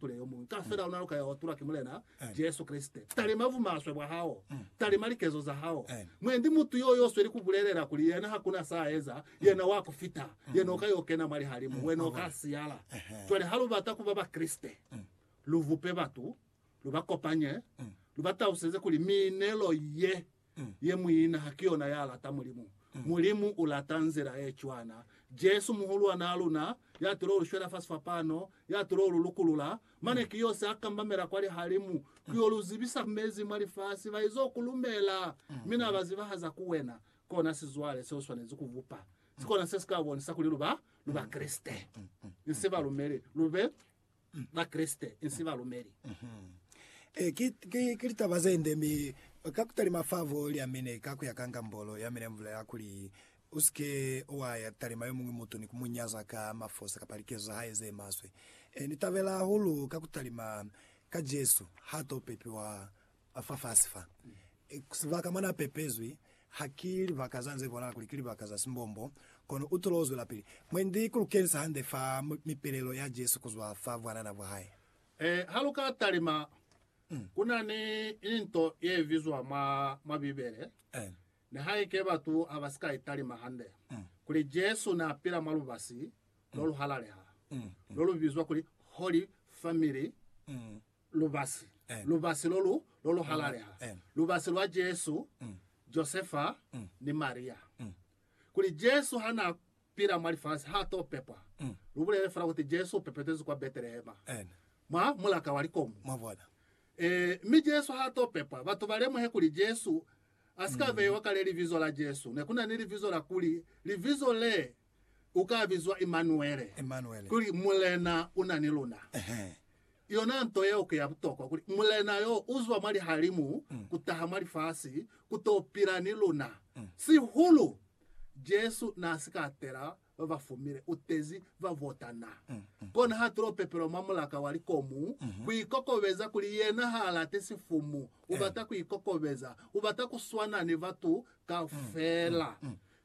Tule yomuñwi kaufela ona lukaya wa tulwa ki Mulena Jesu Kreste. Talima bumaswe bwa hao. Talima likezo za hao. Mwendi mutu yo yo sweli kubulelela kuli yena hakuna sa eza, yena wa kufita. Yena uka yo kena mwa lihalimu, wena uka siyala. Cwale ha lubata kuba Bakreste, lubupe batu, lubakopanye, luba taluseze kuli miinelo ye Ye muina ha ki yona ya lata Mulimu. Mulimu u lata nzila ye cwana. Jesu, Muhulwan'a luna, ya tilo ulu shwela fasi fapano, ya tilo ulu lukulula, mane ki yo se a kambamela kwa lihalimu ku yo lu zibisa mezi mwa lifasi, ba izo ku lumela, mi na ba zibahaza ku wena. Kona sizwale se u swanezi ku bupa. Si kona se si ka bonisa kuli lu ba, lu Bakreste. Ni se balumeli. Lu be. Bakreste insi balumeli. Ee, ki, ki, ki litaba zende, mi ka kutalima fa vo lya mine, ka kuya ka ngambolo ya mine mvulela kuli, Usike wa ya talima yomuñwi mutu ni ku mu nyaza ka mafosa kapa likezo za hae ze maswe. Ee, ni tabela hahulu ka kutalima ka Jesu ha to pepiwa ba fafasi fa. Sibaka mwa n'a pepezwi ha ki libaka za nze bonala kuli ki libaka za simbombo, kono u tolo o zwelapili. Mwendi, ku lu kenisa hande fa mipelelo ya Jesu ku zwa fa bwanana bwa hae. Ee, ha lu ka talima, ku na ni into ye bizwa mwa, mwa Bibele, nihaike batu ha ba si ka i talima hande, kuli Jesu n'a pila mwa lubasi lo lu halaleha, lo lu bizwa kuli Holy Family. lubasi, lubasi lo lu, lo lu halaleha, lubasi lwa Jesu, Josefa, ni Maria. Kuli Jesu ha na pila mwa lifasi, ha to pepwa. Lu bulele fela kuti Jesu u pepetezwi kwa Betelehema, mwa mulaka wa likomu. Mwabona? Ee, mi Jesu ha to pepwa. Batu ba lemuhe kuli Jesu a si ka beiwa kale libizo la Jesu. Ne ku na ni libizo la kuli, Libizo le u ka bizwa Imanuele, Imanuele. kuli Mulena u na ni luna. Ehe. Yona nto yeo ki ya butokwa, kuli Mulena yo u zwa mwa lihalimu ku taha mwa lifasi ku to pila ni luna. Sihulu, Jesu n'a si ka tela ba ba fumile, u tezi ba bota na. Kona ha tulo pepelwa mwa mulaka wa likomu, ku ikokobeza kuli yena h'a lati sifumu, u bata ku ikokobeza, u bata ku swana ni batu kaufela.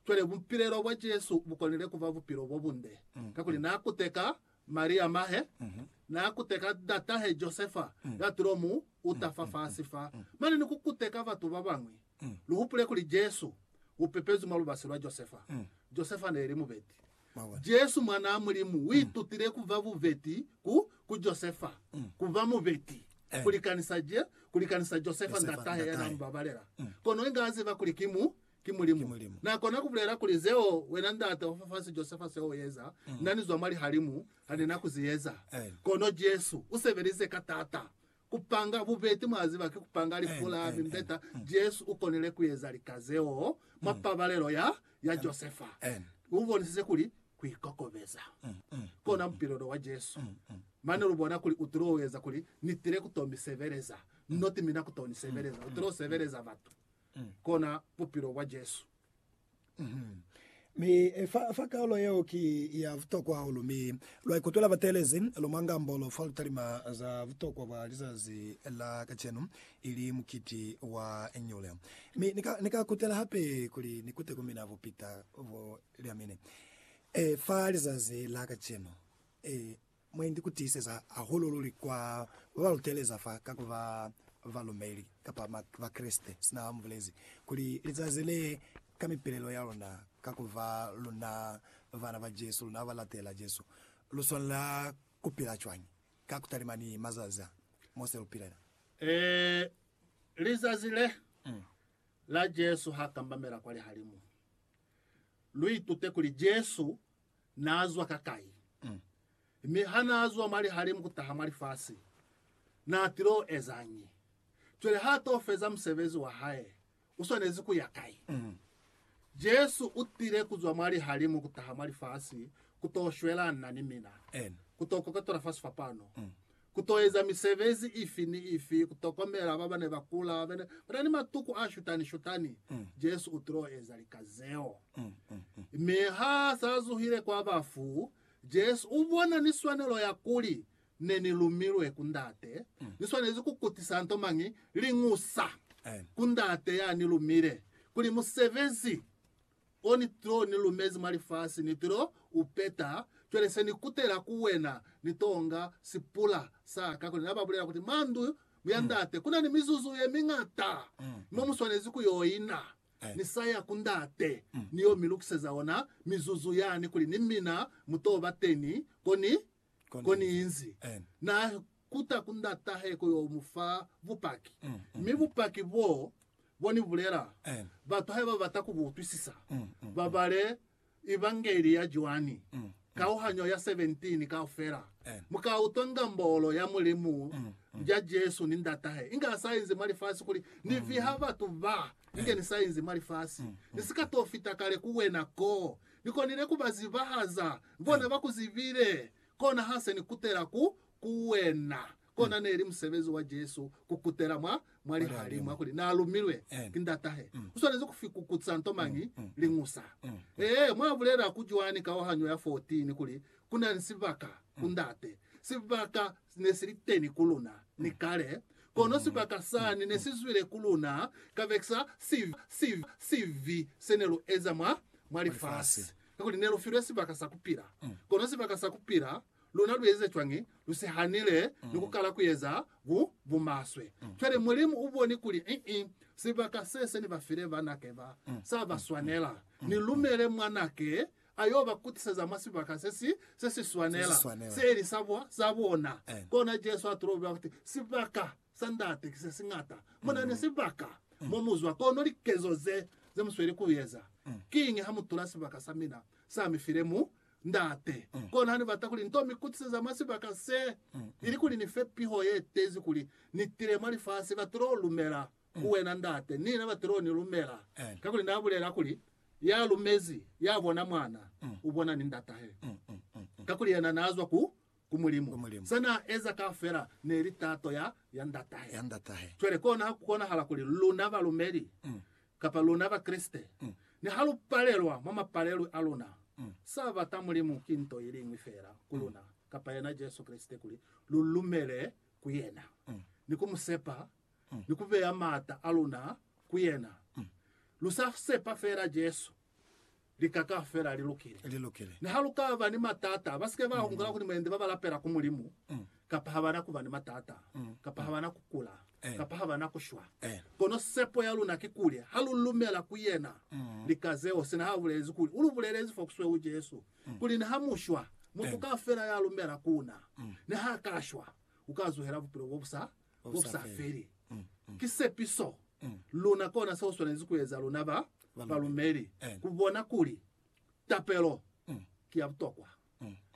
Cwale, bupilelo bwa Jesu bu konile ku ba bupilo bo bunde, kakuli n'a kuteka Maria mahe, n'a kuteka ndatahe Josefa ya tulo mu uta fa fasi fa, mane ni ku kuteka batu ba bañwi. Lu hupule kuli Jesu u pepezwi mwa lubasi lwa Josefa. Josefa n'e li mubeti. Jesu, Mwanaa Mulimu, u itutile ku ba bubeti ku, ku Josefa, ku ba mubeti, ku likanisa, ku likanisa Josefa ndatahe ya n'a mu babalela. Kono inge a ziba kuli ki mu, ki Mulimu. Na kona ku bulela kuli, Zeo wena Ndate wa fafasi Josefa zeo u eza, na ni zwa mwa Lihalimu ha ni na ku zi eza. Kono Jesu u sebelize ka t'ata ku panga bubeti, mwa ziba, ki ku panga lifu la mimbeta. Jesu u konile ku eza lika zeo mwa pabalelo ya, ya Josefa. U bonisize kuli ku ikokobeza kona bupilo lo wa Jesu. Mane lu bona kuli u tilo eza kuli, Ni tile ku to mi sebeleza. Niti mina ku to ni sebeleza. U tilo sebeleza batu. kona bupilo bwa Jesu. Mi fa, fa kaulo yeo ki ya butokwa hahulu, mi lwa ikutwela bateelezi lu mwa ngambolo fa lu talima za butokwa bwa lizazi la kacenu, ili mukiti wa nyule. Mi ni ka, ni ka kutela hape kuli ni kute ku mina bupita bo lya mine, e, fa lizazi la kacenu, e, Mwendi ni ku tiiseza hahulu luli kwa ba ba luteleza fa ka ku ba balumeli kapa Bakreste, sina ba mu bulezi kuli lizazi le, ka mipilelo ya luna, ka ku ba luna bana ba Jesu, luna ba latela Jesu, lu swanela ku pila cwañi ka ku talima ni mazazi a mo se lu pilela? Ee, lizazi le la Jesu ha kambamela kwa lihalimu, lu itute kuli Jesu naa zwa kakai, mi ha naa zwa mwa lihalimu kutaha mwa lifasi, naa tilo ezañi? Cwale ha to feza musebezi wa hae, u swanezi ku ya kai? Jesu u tile ku zwa mwa lihalimu kutaha mwa lifasi ku to shwelana ni mina, ku to koketola fa sifapano. Ku to eza misebezi ifi ni ifi, ku tokomela ba ba ne ba kula, ba na ni matuku a shutani-shutani, Jesu u tilo eza lika zeo. Mi ha s'a zuhile kwa bafu, Jesu u bona ni swanelo ya kuli, Ne ni lumilwe ku Ndate, ni swanezi ku kutisa nto mañi? Liñusa ku Ndate ya ni lumile, kuli musebezi o ni to ni lumezi mwa lifasi, ni to u peta. Cwale se ni kutela ku wena, ni tonga sipula sa ka kuli na ba bulela kuti, Mwa ndu ya Ndate ku na ni mizuzu ye miñata mo mu swanezi ku yo ina. Ni sa ya ku Ndate, ni yo mi lukiseza ona mizuzu yani kuli ni mina mu to ba teni ko ni Koniinzi na kuta ku ndatahe ku yo mu fa bupaki, mi bupaki boo bo ni bulela, batu haiba ba bata ku bu utwisisa, ba bale Evangeli ya Joani, kauhanyo ya 17 kaufela. Mu ka utwa ngambolo ya Mulimu ja Jesu ni Ndatahe inge a sa inzi mwa lifasi kuli, Ni viha batu ba, inge ni sa inzi mwa lifasi. Ni si ka to fita kale ku wena koo Ni konile ku ba zibahaza, bona ba ku zibile, kona ha se ni kutela ku, ku wena. Kona neli musebezi wa Jesu ku kutela mwa, mwa lihalimu, ya kuli Na lumilwe ki Ndatahe. U swanezi ku fikukuza nto mañi? Liñusa. Ee, mwa bulela ku Joani kauhanyo ya 14 kuli, Ku na ni sibaka ku Ndate, sibaka Si ne si li teni ku luna ni kale, kono sibaka sani ne si zwile ku luna kabekisa sibi se ne lu eza mwa lifasi. Kakuli ne lu filwe sibaka sa ku pila, kono sibaka sa ku pila luna lu eze cwañi? Lu si hanile ni ku kala ku eza bumaswe. Cwale Mulimu u boni kuli ii, sibaka se se ni ba file banake ba, sa ba swanela. Ni lumele Mwanake a yo ba kutiseza mwa sibaka se si, se si swanela, se li sa bo, sa bona. Kona Jesu a tulo bula kuti, Sibaka sa Ndate ki se si ñata. Mu na ni sibaka mo mu zwa, kono likezo ze, ze mu sweli ku eza. Kiñi ha mu tula sibaka sa mina, sa mi file mu, Ndate? Kono ha ni bata kuli ni to mi kutiseza mwa sibaka se, ilikuli ni fe piho ye tezi kuli ni tile mwa lifasi, ba tulo lumela. ku wena, Ndate, ni na Batiloni lumela, kakuli na bulela kuli, Ya lumezi, ya bona Mwana, u bona ni Ndatahe. Kakuli yena na zwa ku, ku Mulimu. Se na eza kaufela ne li tato ya, ya Ndatahe. Cwale kona ha ku konahala kuli luna balumeli, kapa luna Bakreste, niha lu palelwa mwa mapalelwi a luna, sa bata Mulimu ki nto iliñwi feela ku luna, kapa yena Jesu Kreste, kuli lu lumele ku yena, ni ku mu sepa ni ku beya maata a luna ku yena. Lu sa sepa feela Jesu, li ka ka fela li lukile. Li lukile. Niha lu ka ba ni matata, ba si ke ba hungula kuli mwendi ba ba lapela ku Mulimu, kapa ha ba na ku ba ni matata, kapa ha ba na ku kula, kapa ha ba na ku shwa. Kono sepo ya luna ki kuli ha lu lumela ku yena, li ka zeo. Sina ha bulezi kuli, u lu bulelezi fo kusweu Jesu kuli, ni ha mu shwa, mutu kaufela ya lumela ku na, ni ha ka shwa, u ka zuhela bupilo bo bu sa Busafeli. Ki sepiso luna kona seo swanezi kueza luna ba balumeli, kubona kuli tapelo ki ya butokwa.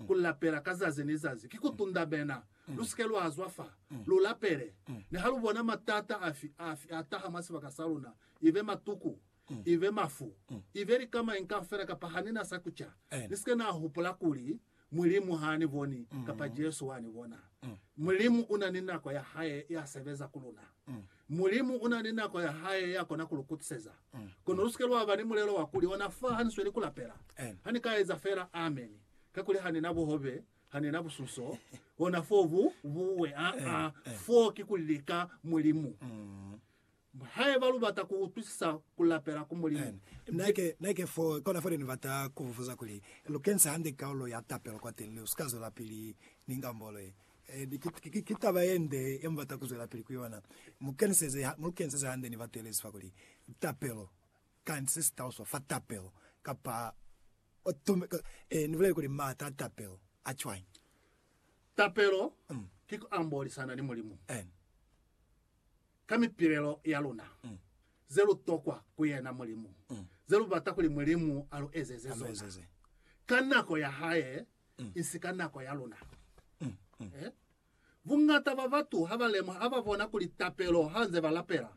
Kulapela ka zazi ni zazi ki kutundamena. Lusike lwazwa fa, lulapele niha lubona matata afi afi ataha mwa sibaka saluna, ibe matuku, ibe mafu, ibe lika mañi kaufela kapa hanina sa kuca. Nisike nahupula kuli Mulimu ha ni boni, kapa Jesu wa ni bona. Mulimu una ni nako ya Hae ya sebeza ku luna. Mulimu una ni nako ya Hae ya kona ku lu kutiseza. Kono lusike lwa ba ni mulelo wa kuli, Ona fa, ha ni sweli ku lapela. Ha ni ka eza fela ameni, kakuli ha ni na buhobe, ha ni na busunso, ona fo bu buwe. Aa, fo ki ku lika Mulimu. Haiba lubata kuutwisisa kulapela ku Mulimu, mi. Neke fo, kona fo ne nibata kububuza kuli, Lukenisa hande kaulo ya tapelo kwateni, mi usika zwelapili ni ngambolo ye. Ki, ki taba yende yemubata kuzwelapili ku yona. Mukeniseze, mulukeniseze hande ni batu yelezi fa kuli, Tapelo, kani sesitaluswa fa tapelo? Kapa, Ee, nibulele kuli maata a tapelo a cwañi? Tapelo ki kuambolisana ni Mulimu. Amen. ka mipilelo ya luna ze lu tokwa ku yena Mulimu, ze lu bata kuli Mulimu a lu ezeze zona ka nako ya hae, isi ka nako ya luna. Eh? Bungata ba batu ha ba lemuha, ha ba bona kuli tapelo ha nze ba lapela,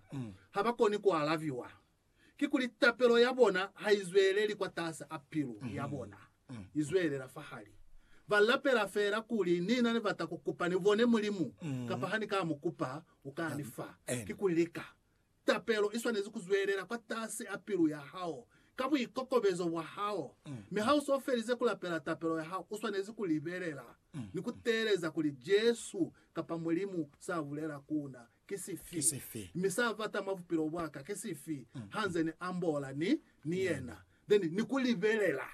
ha ba koni ku alabiwa. kikuli tapelo ya bona ha i zweleli kwatasi a pilu ya bona, i zwelela fahali. Ba lapela feela kuli, Ni na ni bata ku kupa ni bone Mulimu, kapa ha ni ka mu kupa, u ka ni fa. Kikuli lika. Tapelo i swanezi ku zwelela kwatasi a pilu ya hao, ka buikokobezo bwa hao. Mi ha u so felize ku lapela tapelo ya hao, u swanezi ku libelela ni ku teeleza kuli Jesu kapa Mulimu sa bulela ku na. Ki sifi? Mi sa bata mwa bupilo bwa ka ki sifi, ha nze ni ambola ni, ni yena, then ni ku libelela.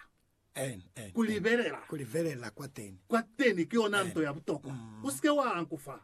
Ku libelela. Ku libelela kwateni. Kwateni ki yona nto ya butokwa. U sike wa ankufa.